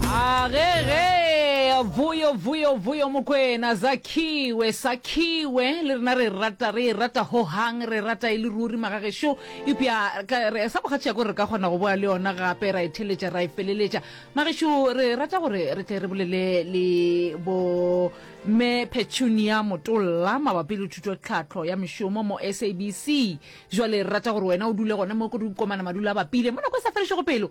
agege vuyo vuyo vuyo mokwena zakhiwe sakhiwe le rena re rata re e rata hohang re rata e le ruri magagešo epja sa bogatšhea ko re ka kgona go boa le yona gape ra e theletša ra e feleletša magešo re rata gore re tle re bolele le bo me petunia motolla mabapi le thuto tlhatlho ya mešomo mo sabc jale re rata gore wena o dule gone mo ko re ukomana madula a bapile mo nako e sa felešego pelo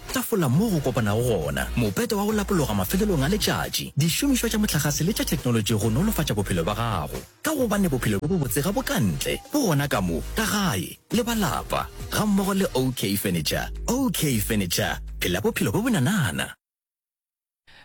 Tafola moo go kopanago gona, mopete wa go lapologa mafelelong a letšatši, dišomišwa tša mohlagase le tša theknolotši go nolofatša bophelo bja gago. Ka gobane bophelo bjo bobotse ga bo ka ntle, bo gona ka mo, ka gae, le ba lapa, gammogo le OK Furniture. OK Furniture, phela bophelo bjo bonanana!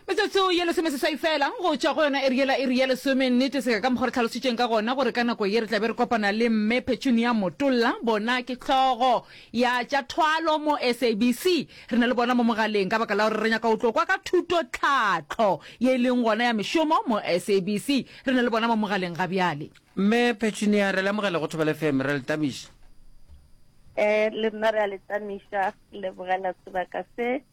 Metsotso ye lesomeseswai feela go tšwa go yona iri yela iri ya lesome, nnete seka ka mokgwa re tlhalositšeng ka gona gore ka nako ye re tla be re kopana le Mme Petunia Motolla, bona ke hlogo ya tša thwalo mo SABC. Re na le bona mo mogaleng ka baka la gore re nyaka go tlo kwa ka thuto tlhahlo ye e leng gona ya mešomo mo SABC. Re na le bona mo mogaleng ga bjale. Mme Petunia, re le amogele go Thobela FM, re a le tamiša. Ee, le nna re a le tamiša, lebogela sebaka se.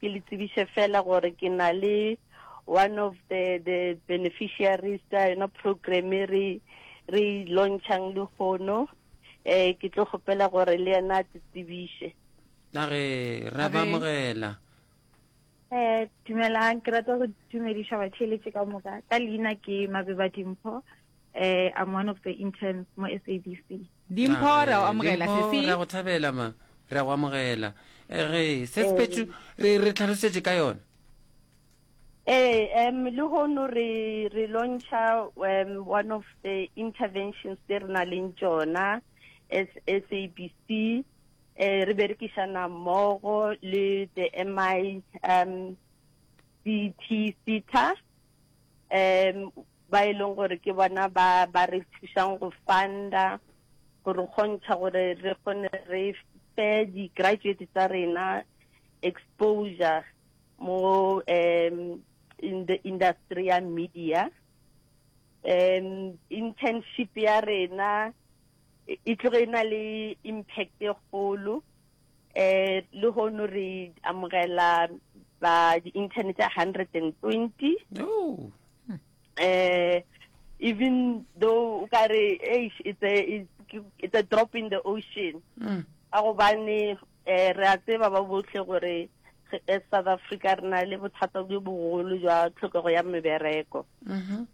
Ke le tsebiše fela gore ke na le one of the the beneficiaries tsa yona program e re re launchang le gono eh ke tlo gopela gore le yena a tsebiše na re ra ba mogela eh dumelang ke rata go dumediša batheeletše ka moka ka leina ke mabeba dimpho eh i'm one of the interns mo sabc Dimpho, re a go amogela, Dimpho, sesi. re a go thabela, ma. Re a go amogela. Eh, Re, sesi Petru, re, re tlhalosetše ka yona. Ee, em, lehono re, re lontšha em, one of the interventions tse re na leng tšona as SABC. Eh, re berekišana mmogo le the MI um, CT SETA. Um, ba e leng gore ke bona ba ba re thušang go funda go re kgontšha gore re kgone re fe di-graduate tsa rena exposure mo um in the industry ya media um internship ya rena e tloge e na le impact e kgolo um lehono re amogela ba di-intern tša hundred and twenty um even though o ka re it's a, it's a drop in the ocean mm. ka gobane um re a tseba ba botlhe gore e south africa re na le bothata jo bogolo jwa tlhokego ya mebereko mm-hmm.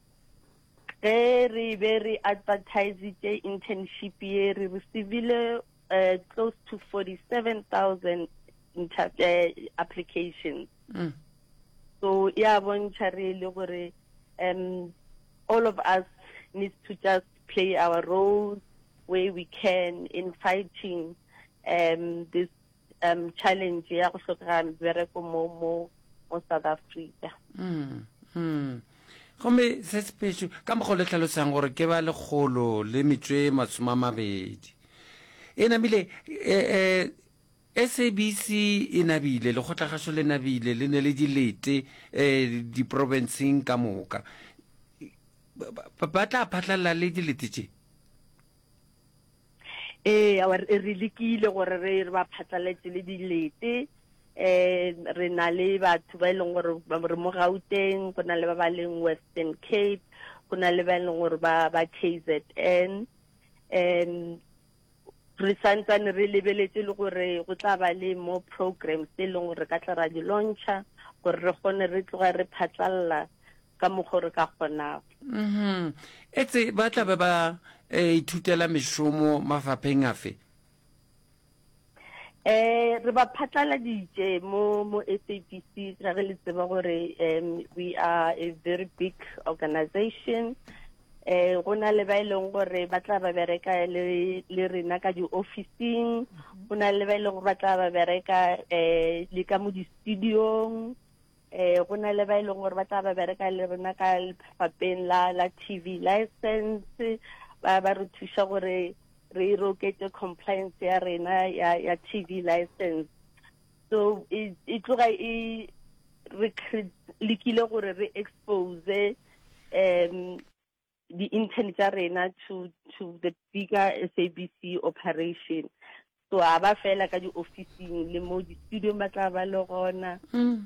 ge re be re advertisitse internship ye re receivile uh, close to 47,000 uh, applications. Mm. So yeah, bontšha re le gore um all of us needs to just play our role where we can in fighting um this um challenge ya go tlhokega bereko mo mo mo South Africa. Mm. Mm. Gomme se sepetšo, ka mokgwa o le hlalosang gore ke ba lekgolo le metswe masome a mabedi. E namile, e, e, SABC e nabile, lekgotlagašo le nabile, le ne le dilete e, diprobenseng ka moka. Ba, ba, ba tla phatlalela le dilete tše. ee awa re re lekile gore re re ba phatlaletse le dilete um re na le batho ba e leng gore ba re mo gauteng go na le ba ba leng western cape go na le ba e leng gore ba ba k z n um re santsane re lebeletse le gore go tla ba le more programs tse e leng gore re ka tla ra di launcha gore re kgone re tloga re phatlalela ka mokgo re ka kgonago mm-hmm. etse ba tla be ba eh, ithutela mešomo mafapheng afe eh re ba phatlaladitše mo mo SAPC ra re le tseba gore um we are a very big organization eh go na le ba e leng gore ba tla ba bereka le le rena ka di officing go na le ba e leng gore ba tla ba bereka eh le ka mo di studiong eh go na le ba e leng gore ba tla ba bereka le rena ka lephapeng la la TV license ba ba re thusa gore re roketse compliance ya rena ya ya TV license so e e tloga e re lekile gore re expose um di-intern tša rena to, to the bigger SABC operation. So a ba fela ka di-officing le mo di-studiong ba tla ba le gona, um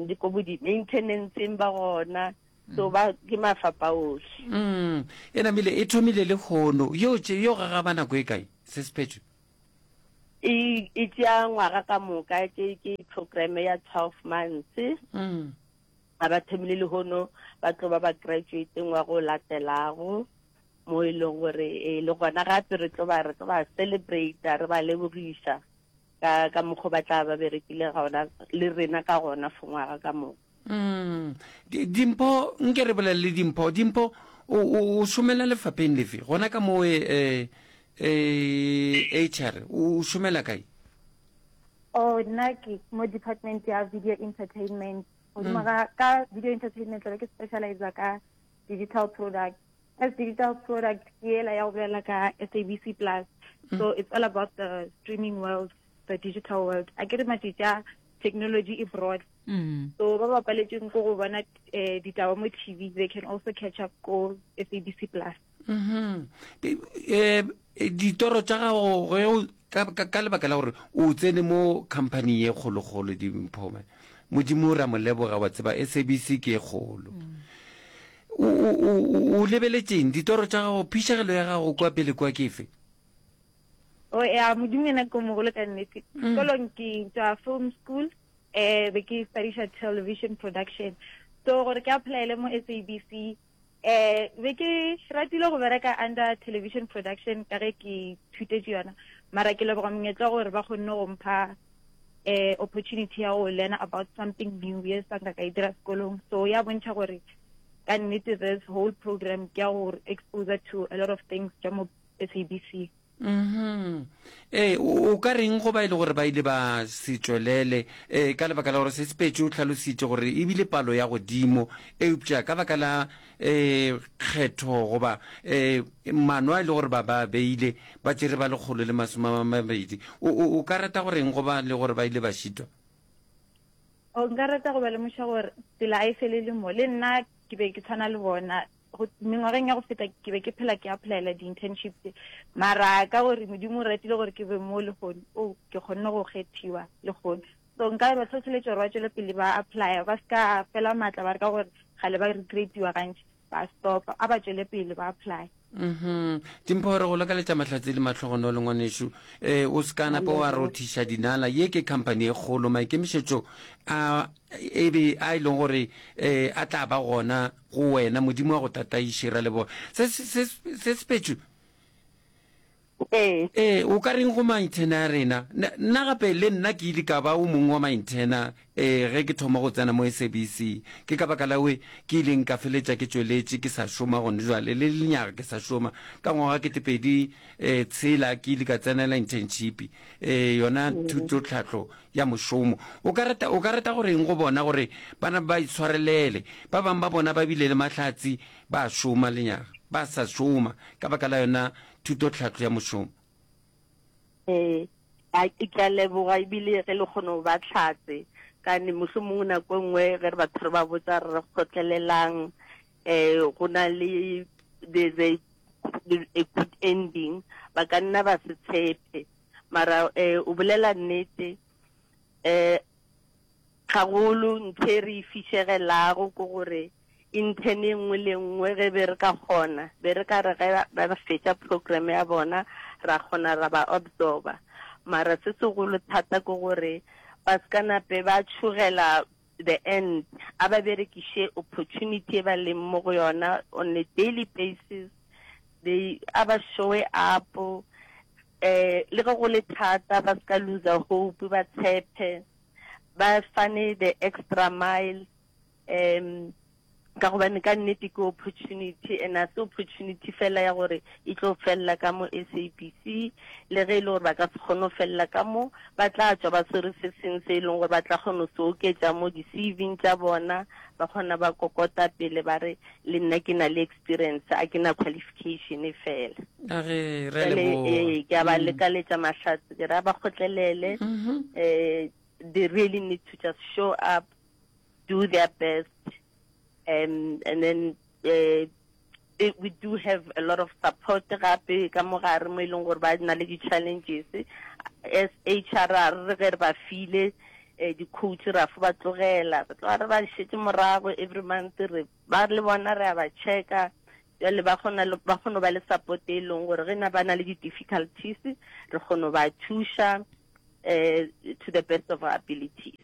le ko bo di-maintenanceng ba gona, so ba ke mafapa ohle. Mm. E namile e thomile le kgono. Yo tše yo gagaba nako e kae? Se sephetšwe. E, e tšea ngwaga ka moka, ke, ke programe ya 12 months. Mm. A ba thomile lehono ba tlo ba bakratuateng wa go latelago, mo e lego gore e le gona gape re tlo ba re tlo ba celebrata re ba lebogiša ka ka mokgo ba tla ba berekile gona le rena ka gona for ngwaga ka moka. Mm. Dimpho, nke re bolelele Dimpho. Dimpho, o, o, o šomela lefapheng lefe? Gona ka mo e, e, e, HR, o šomela kae? Oh, nna ke mo department ya video entertainment. godimo ga ka video entertainment tlabe ke specializa ka digital product as digital product ke ela ya go bolela ka sabc plus so it's all about the streaming world the digital world a ke re matšitša technology e broad mm. so ba ba paletseng ko go bona eh, ditaba mo tv they can also catch up ko sabc plus um ditoro tša gago ka lebaka la gore o tsene mo company ye kgolokgolo dimphome modimo o ra moleboga wa tseba sabc ke e kgolo o lebeletseng ditoro tša gago phišegelo ya gago kwa pele kwa ke fe o ya modimo ena ke mogolo ka nnete sekolong mm. ke tswa film school um be ke studiša television production so gore ke applyele mo sabc um be ke ratile go bereka under television production ka ge ke thutetše yona mara ke leboga monyetla gore ba kgonne go mpha um opportunity ya go learn about something new ye sanka ka e dira sekolong so ya bontšha gore ka nnete this whole program ke ya go exposure to a lot of things tša mo sabc Mm-hmm. Ee, o ka reng go ba e le gore ba ile ba se tšwelele ee ka lebaka la gore se sepetše o tlhalositše gore e bile palo ya godimo eupša ka baka la um kgetho goba um mano a e le gore ba ba beile ba tšere ba lekgolo le masome a mabedi o ka rata go reng go ba le gore ba ile ba šitwa o nka rata go ba lemoša gore tsela a e felele mo le nna ke be ke tshwana le bona go mengwageng ya go feta ke be ke phela ke applyela di-internship tse mara ka gore modimo o ratile gore ke be mo legono o oh, ke kgonne go kgethiwa legono so nka re batho tshweletse gore ba tswele pele ba applya ba se ka fela maatla ba re ka gore gale ba recreatiwa gantši ba stopa a ba tswele pele ba apply mhm dimpo gore go lakaletša mahlatse le matlhogono le ngwanešu eh o se kana po wa rothiša dinala ye ke company e kgolo maikemišetšo a e be a e leng gore eh a tla ba gona Go wena, Modimo wa go tataiše. Re a leboga. Se, se, se, se sepetšwe. Ee. Ee, o ka reng go maintena a rena? Na, nna gape, le nna ke ile ka ba o mongwe wa maintena, ee, ge ke thoma go tsena mo SABC. Ke ka baka la we, ke ileng ka feletša ke tšweletše ke sa šoma gone jwale, le lenyaga ke sa šoma. Ka ngwaga ketepedi, ee, tshela, ke ile ka tsenela internship, ee, yona thutotlhahlo ya mošomo. O ka rata, o ka rata gore eng go bona gore ba na ba itshwarelele? Ba bang ba bona ba bile le mahlatsi, ba a šoma lenyaga, ba sa šoma ka baka la yona thutotlhahlo ya mošomo. Ee, a ke ke a leboga ebile ge le kgone go ba tlhatse kane moso mongwe nako e nngwe ge re batho re ba botsa re kgotlelelang um go na le there's a, a good ending ba ka nna ba se tshepe mara eh, o bolela nnete eh, gagolo nthe re e fišegelago ko gore intern e nngwe le nngwe ge be re ka kgona be re ka re ge ba fetša program ya bona ra kgona ra ba absorba mara se segolo thata ke gore ba se ka nape ba tšhogela the end, a ba berekiše opportunity e ba leng mo go yona on a daily basis, they, a ba showe up, eh, le ge go le thata ba se ka looser hope, ba tshephe, ba fane the extra mile, um. Ka gobane ka nnete ke opportunity, and ga se opportunity fela ya gore e tlo felela ka mo SABC, le ge e le gore ba ka se kgone go felela ka mo, ba tla tšwa ba swere se sengwe se e leng gore ba tla kgona go se oketša mo di-CV-ing tša bona, ba kgona ba kokota pele ba re le nna ke na le experience, ga ke na qualification e fela. A re, re a Jwale, leboga. ee, ke a ba lekaletša mahlatse, ke ra ba kgotlelele, eh, they really need to just show up, do their best um, and then uh, they, we do have a lot of support gape ka mo gare mo e leng gore ba na le di-challenges as h r r re ge re ba file um di-coach ra fo ba tlogela re tloga re ba šetse morago every month re ba le bona re a ba checka jale ba kgona ba kgona ba le support e leng gore ge na ba na le di-difficulties re kgona ba thuša um to the best of our abilities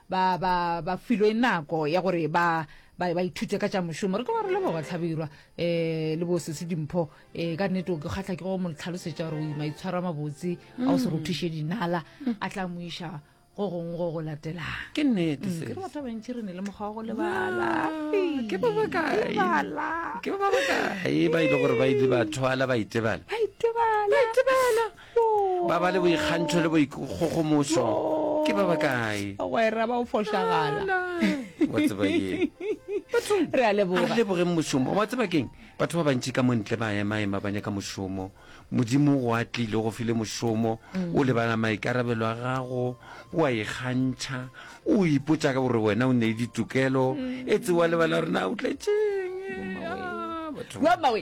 ba ba ba filwe nako ya gore ba ba ba ithute ka tša mošomo re tlo ba re leboga tlhabirwa um le bo sese dimpho um ka nnete o ke kgatlha ke go mo tlhalosetša gore o ima itshwaro a mabotse a o se mm. rothiše dinala mm. a tla mo iša go gongwe go go latelang ke nnete mm, ke re batho ba bantšhi re ne le mokgwa wa go lebalake ba bakae ba e le gore ba ile ba thwala ba itebala ba itebala ba ba le boikgantšho le boikgogomošo ke ba ba kae bagwera ba o fošagala wa tseba ye bathong Re a leboga. re lebogeng mošomo wa tseba keng batho ba bantši ka montle ba emaema ba nyaka mošomo modimo o atlile go file mošomo o lebala maikarabelo a gago o a ikgantšha o ipotsa ka gore wena o ne le ditokelo e tsewa lebala gore na o tletšeng Ah, batho ba- Wa mawe.